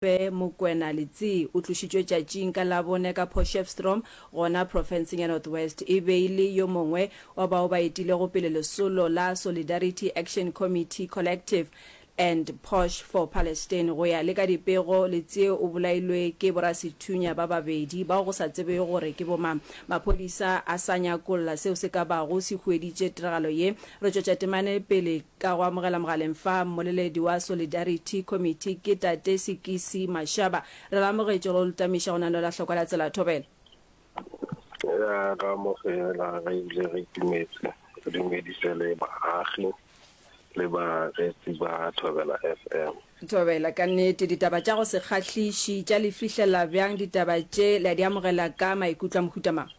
Rre Mokwena Letsee o tlošitšwe tšatšing ka Labone ka Potchefstroom gona profenseng ya North West e be e le yo mongwe wa bao ba etilego pele lesolo la Solidarity Action Committee Collective and Posh for Palestine. Go ya le ka dipego, Letsee o bolailwe ke borasethunya ba babedi bao go sa tsebwego gore ke bomang. Maphodisa a sa nyakolla seo se ka bago se hueditše tiragalo ye. Re tšwetša temane pele. Ka go amogela mogaleng fa mmoleledi wa Solidarity Committee ke Tate Sekisi Mashaba. Re le amogetše go ltamiša go na le la hlokwa la tsela thobela. Re a le amogela re bile re itumetse re dumedise le baagi le bareetsi ba Thobela FM. Thobela, ka nnete ditaba tša go se kgahliši tša le fihlelela bjang ditaba tše le a di amogela ka maikutlo a mohuta mang?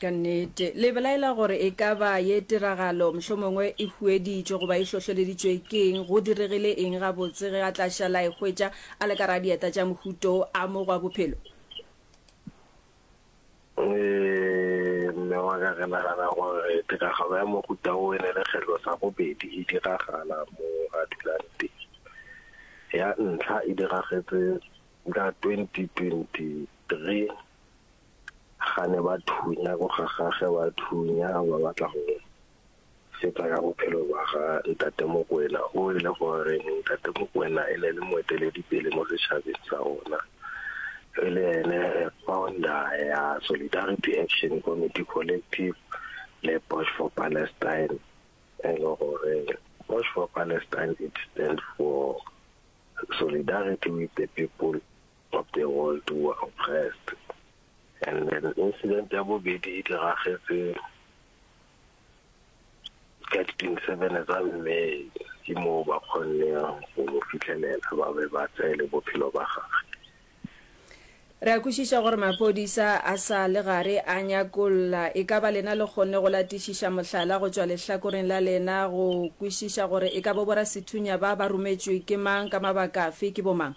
Ka nnete, le belaela gore e ka ba ye tiragalo mohlomongwe e hueditšwe goba e hlohleleditšwe ke eng? Go diregile eng gabotse ge a tla šala a e hwetša a le ka gare ga dieta tša mohuto wo a mo gwa bophelo? Ee, mme wa ka, re nagana gore tiragalo ya mohuta wo e ne e le kgetlo sa bobedi e diragala moo a dulang teng. Ya ntlha e diragetše ka 2023 gane ba thunya go gagage ba thunya ba batla go fetsa ka bophelo ba ga ntate Mokwena o e le gore ntate Mokwena e ne le moeteledipele mo setšhabeng sa rona e le ene founder ya Solidarity Action Committee Collective le Bosch for Palestine e le gore Bosch for Palestine it stand for solidarity with the people of the World War oppressed and then incident ya bobedi e diragetse ka di 27 tsa May ke moo ba kgonneng go mo fitlhelela ba be ba tseele bophelo ba gagwe Re a kwešiša gore maphodisa a sa le gare a nyakolla. E ka ba lena le kgonne go latišiša mohlala go tšwa lehlakoreng la lena go kwešiša gore e ka bo borasethunya ba ba rometšwe ke mang, ka mabaka afe, ke bomang?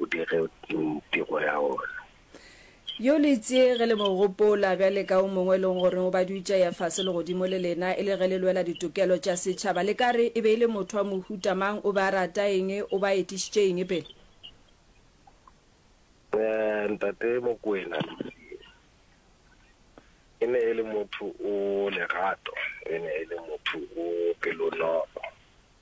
o dire tiro ya ona. Yo le itše ge le mo gopola, bjale ka o mongwe e lego gore o badutše ya fase legodimo le lena, e le ge le lwela ditokelo tša setšhaba, le ka re e be e le motho wa mohuta mang? O be a rata eng? O be a etišitše eng pele? Ntate Mokwena, Lucy e ne e le motho o lerato, e ne e le motho o pelonolo.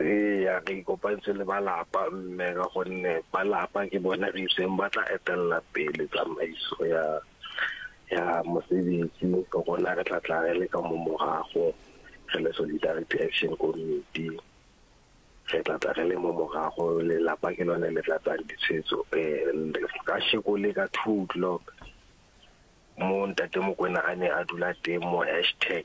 Eya, re ikopantse le ba lapa mme ka gonne ba lapa ke bone re iseng ba tla etelela pele tsamaiso ya ya mosebetsi rona re tla tla re le ka mo morago re le Solidarity Action Committee re tla tla re le mo morago lelapa ke lone le tlatsang ditshwetso ka sheko le ka two o'clock mo ntate Mokwena a ne a dula teng mo hashtag.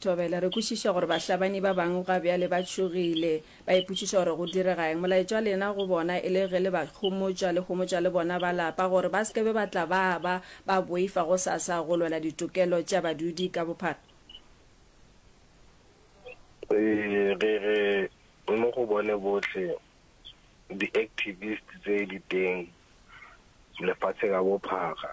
Thobela, Re kwešiša gore bahlabani ba bangwe ga bjale ba tšhogile, ba ipotšiša gore go direga eng. Molaetša wa lena go bona e le ge le ba homotša, le homotša le bona ba lapa gore ba se ke be ba tla ba ba ba boifa gosasa go lwela ditokelo tša badudi ka bophara. Ee, re re mo go bone bohle di-activists tse di teng lefatshe ka bophara.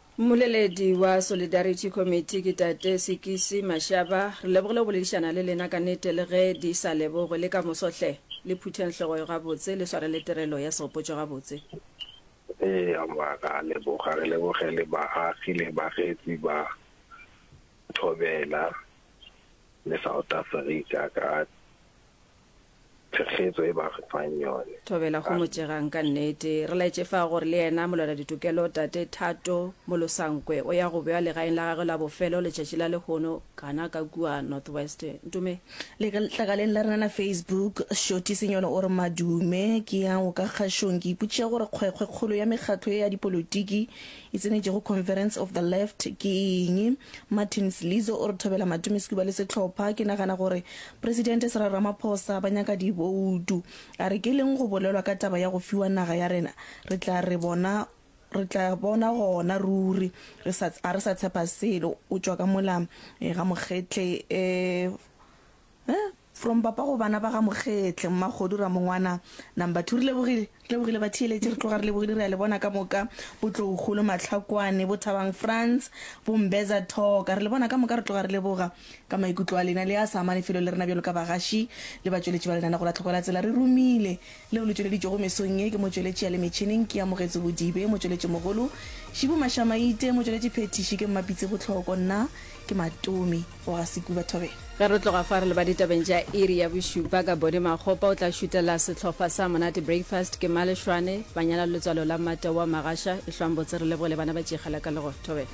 Mmoleledi wa Solidarity Committee ke Tate Sekisi Mashaba. Re lebogile go boledišana le lena ka nete le ge di sa lebogwe. Le ka moso hle, le phutheng hlogo yo gabotse, le sware le tirelo ya segopotšo gabotse. Eya mma, ra leboga. Re leboge le baagi le bareetsi ba Thobela le South Africa ka thekgetso e ba re fang yone. Thobela Gomojegang ka nnete. Re laetše fa gore le yena molwela-ditokelo Tate Thato Molosankwe o ya go bewa legaeng la gagwe la bofelo letšatši la lehono kana ka kua North West. Ntume. Letlakaleng la rena la Facebook, Shoti Senyolo o re, Madume, ke ya go ka kgašong ke ipotšiša gore kgwekgwe kgolo ya mekgatlo ye ya dipolotiki e tsenetšego Conference of the Left ke eng? Martin Slizo o re thobela Matumi Skuba le sehlopha, ke nagana gore Presidente Cyril Ramaphosa ba nyaka diboutu. A re ke leng go bolelwa ka taba ya go fiwa naga ya rena, re tla re bona re tla bona gona ruri, re sa a re sa tshepa selo, o tšwa ka mola ga Mokgetle eh, Eh, from papa go bana ba ga Mokgetle, Mmakgodu, Ramongwana, number two. Re lebogile, re lebogile batheeletši, re tloga re lebogile, re a le bona ka moka, bo Tloukgolo, Matlhakwane, bo Thabang Frans, bo Mbeza Thoka, re le bona ka moka, re tloga re leboga ka maikutlo a lena le a sa amane felo le rena bjalo ka bagaši le batšweletši ba lenaneo la Tlhoko la Tsela. Re romile. leo le tšweleditšwego mesong ye ke motšweletši ya le metšhineng ke Amogetso Bodibe, motšweletšimogolo Shibu Mashamaite, motšweletšiphethiši ke Mmapitsi Botlhoko, nna ke Matomi go ga Sekuba Thobela. Ge re tloga fa re leba ditabeng tša iri ya bošupa ka Body Makgopa o tla šutela sehlopha sa Monate Breakfast ke Male Shwane, Banyana Letswalo la Mate wa Magasha, Ehlwang Botse Re Leboge le Bana ba Tšikgela ka Lego Thobela.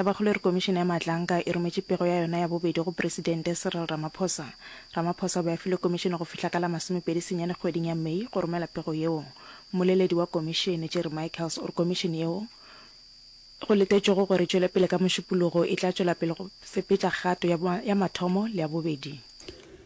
Tabakgolo e re Komišene ya Maatlaanka e rometše pego ya yona ya bobedi go Presidente Cyril Ramaphosa. Ramaphosa o be a filwe Komišene go fihla ka la masomepedi senyane kgweding ya May go romela pego yeo. Mmoleledi wa Komišene, Jerry Michaels, o re Komišene yeo, go letetšwego gore e tšwele pele ka mošupologo, e tla tšwela pele go sepetša kgato ya mathomo le ya bobedi.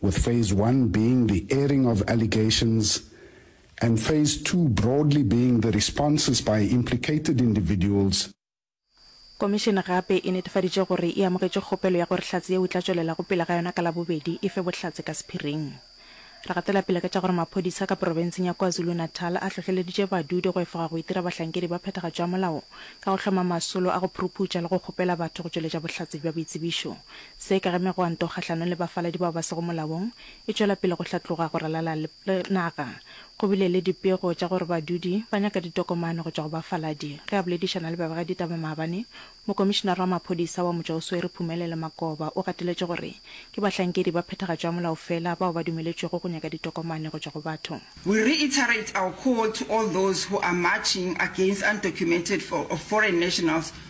with phase one being the airing of allegations and phase two broadly being the responses by implicated individuals, Komišene gape e netefaditše gore e amogetše kgopelo ya gore hlatse yeo e tla tšwelela go pele ga yona ka Labobedi e fe bohlatse ka sephiring. Re gatela pele ka tša gore maphodisa ka porofenseng ya KwaZulu-Natal a hlohleleditše badudi go efoga go itira bahlankedi ba phethagatšo ya molao ka go hloma masolo a go phuruphutša le go kgopela batho go tšweletša bohlatse bja boitsebišo Se ka ge megwanto kgahlanong le bafaladi bao ba sego molaong e tšwela pele go hlatloga go ralala le naga, go bile le dipego tša gore badudi ba nyaka ditokomane go tšwa go bafaladi. Ge a boledišana le babegaditaba maabane, mokomišinare wa maphodisa wa motšwa o swere Phumelelo Makoba o gateletše gore ke bahlankedi ba phethagatšo ya molao fela bao ba dumeletšwego go nyaka ditokomane go tšwa go batho. We reiterate our call to all those who are marching against undocumented or foreign nationals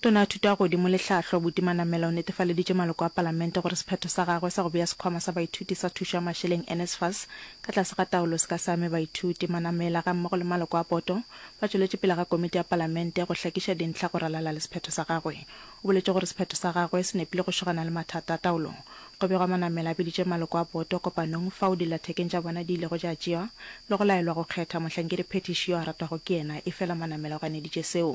Tona Thuto ya Godimo le Tlhahlo Buti Manamela o netefaleditše maloko a Palamente gore sephetho sa gagwe sa go bea Sekhwama sa Baithuti sa Thušo ya Mašeleng, NSFAS, ka tlase ga taolo se ka se ame baithuti. Manamela gammogo le maloko a poto ba tšweletše pele ga Komiti ya Palamente go hlakiša dintlha go ralala le sephetho sa gagwe. O boletše gore sephetho sa gagwe se nepile go šogana le mathata a taolo. Go begwa Manamela a biditše maloko a poto kopanong fao dillathekeng tša bona di ilego tša tšewa le go laelwa go kgetha mohlankedi phethiši yo a ratwago ke yena efela Manamela o ganeditše seo.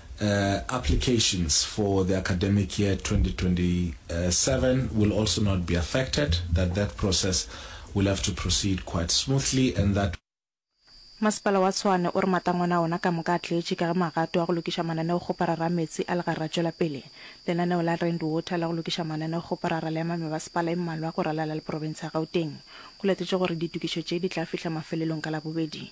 Uh, applications for the academic year 2027 will also not be affected, that that process will have to proceed quite smoothly and that Masepala wa Tshwane o re matangwana a ona ka moka a tletše ka ge magato a go lokiša mananeo kgoparara a meetse a legarra a tšwela pele. Lenaneo la Rand Water la go lokiša mananeo kgoparara le ama mebasepala e mmalwa go ralala le profense ya Gauteng. Go latetšwe gore ditokišo tše di tla fihla mafelelong ka Labobedi.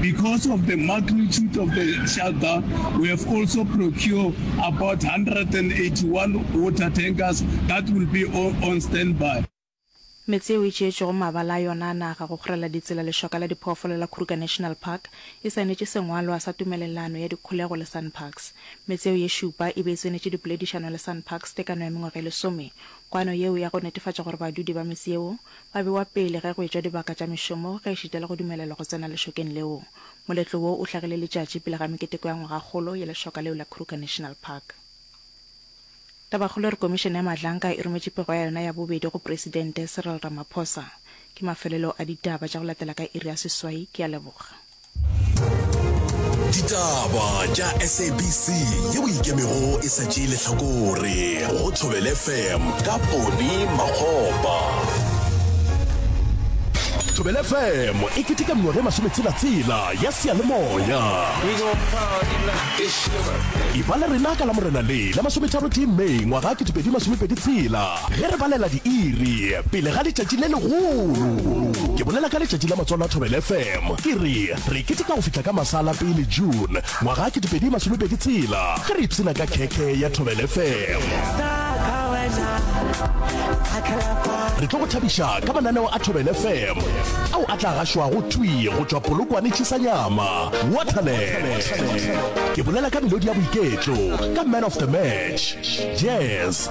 Because of the magnitude of the shutdown, we have also procure about 181 water tankers that will be on standby. Metse yeo e tšeetšwego mabala a yona a naga go kgorela ditsela lešoka la diphoofolo la Kruger National Park e saenetše sengwalwa sa tumelelano ya dikholego le Sanparks. Metse yeo ye šupa e be e tsenetše dipoledišano le Sanparks tekano ya mengwaga e lesome. Kwano yeo ya go netefatša gore badudi ba metse yeo Ba bewa pele ge go etšwa dibaka tša mešomo ge e šitela go dumelelwa go tsena lešokeng leo. Moletlo wo o hlagile letšatši pele ga meketeko ya ngwagakgolo ya lešoka leo la Kruger National Park. Tabakgolo e re Komišene ya Mahlanka e rometše pego ya yona ya bobedi go Presidente Cyril Ramaphosa. Ke mafelelo a ditaba tša go latela ka iri ya seswai. Ke a leboga. ditaba tša sabc ye o ikemego e sa tšee lehlakore go thobele fm ka pone makgopa thobele fm e keteka mengwaga e masometshelatsela ya seyalemoya e ba le rena ka la morena le la masometharotee may ngwaga 2026 Ge re balela diiri pele ga letšatši le legolo, ke bolela ka letšatši la Matswalo a Thobela FM, ke re re keteka go fihla ka masa a la pele June ngwaga 2026 ge re ipshina ka khekhe ya Thobela FM. Re tlo go thabiša ka mananeo a Thobela FM ao a tla gašwago thwi go tšwa Polokwane Chisanyama, Waterland. Ke bolela ka melodi ya boiketlo, ka Man of the Match, Jazz,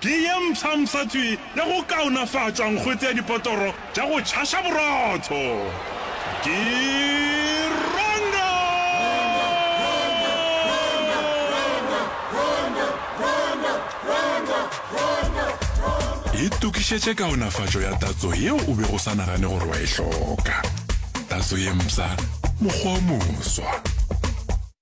Ke ye mpshampsha tswi le go kaonafatšwa nkgwete ya dipotoro tša go tšhaša borotho. Ke Rondo! Itokišetše kaonafatšo ya tatso yeo o bego o sa nagane gore wa e hloka. Tatso ye mpsha, mokgwa o moswa.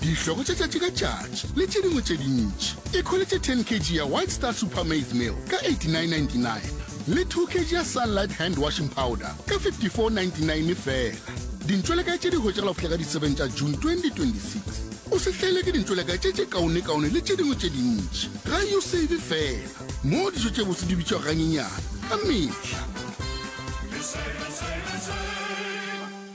dihlogo tša tšatši ka tšatši le tše dingwe tše dintši. E kholetše 10 kg ya White Star Super Maize Meal ka 89.99 le 2 kg ya Sunlight Hand Washing Powder ka 54.99 fela. Dintšwelekae tše di hwetšagala go fihla ka di 7 tša June 2026. O se hlaelwe ke dintšwelekae tše tše kaonekaone le tše dingwe tše dintši. Ga yo save fela, moo dijo tše botse di bitšwago ganyenyane ka mehla.